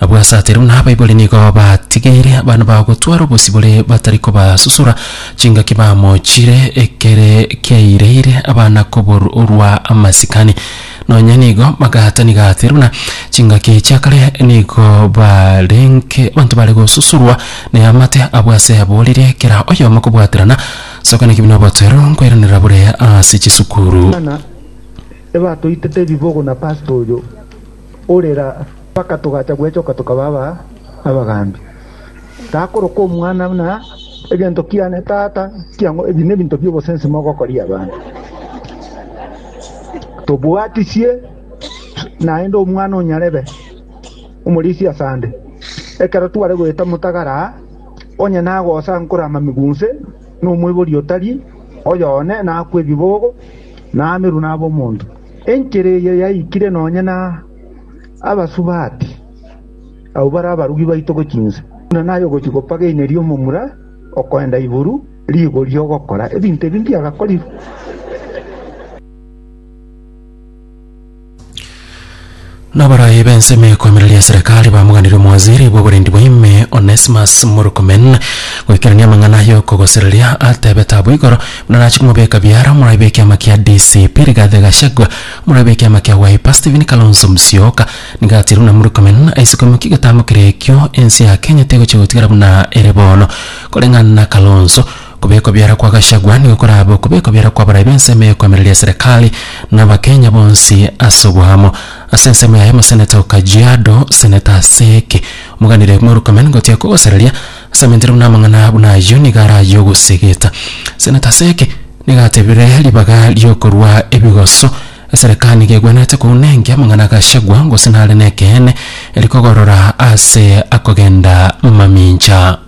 Abwo asatiru na abaibori nigo batigeire abana bao gotwara obosibore batari kobasusura chingaki bamochire ekere kiaireire abana koborwa amasikani. Nonye nigo bagatani gatiru na chingaki chia kare nigo barenge abanto bare gosusurwa ne amate abwo ase aboririe kera oyomo kobwaterana soka ne kibi na obotoero nkoiraneria bore ase chisukuru. Bana, ebatoitete ebibogo na pastor oyo. ore raa, mpaka togacha gwechoka tokaba aba abagaambi. Takorokwa Omwana buna egento kiane Tata, ekiagera ebi nebinto bi'obosensi mogokoria abanto. Tobwatisie naende Omwana onyarebe omorisia asande, ekero tware goeta motagara aa, onye nagosa ankore amamigo onse, nomoibori otari oyo one nakwe ebibogo, naamerwe nabe omonto. Enchera eye yaikire nonya na Abasubati, abwo bare abarugi baito gochia inse, buna naye ogochia gopageineria omomura okoenda iguru rigo ri'ogokora ebinto ebi mbiagakorire. Na abarai b'ensemo ekwamera ria Serekari bamoganirie omowaziri bw'oborendi bwa ime, Onesmus Murkomen, goikerania amang'ana y'okogosereria. Atebete abwo igoro buna nache komobeka biara omorai bw'ekiama kia DCP Rigathi Gachagua, omorai bw'ekiama kia Wiper Stephen Kalonzo Musyoka, nigo atiire buna Murkomen aise koimokia egetambo keria ekio ense ya Kenya tegochia gotigara buna ere bono koreng'ana na Kalonzo. Okobekwa ebiara kwa Gachagua nigo korabe okobekwa ebiara kw'abarai b'ensemo y'ekoemereria eserekari na Abakenya bonsi ase oboamo. Ase ensemo yaye Omoseneta o Kajiado, Seneta Aseke, omoganire Murkomen gotiga kogosereria ase amentire buna amang'ana buna ayio nigo araye ogosegeta. Seneta Aseke nigo atebire ribaga ri'okorua ebigoso, Eserekari nigo egwenerete kounenkia amang'ana a Gachagua gose nare nekeene, erikogoorora ase akogenda mamincha.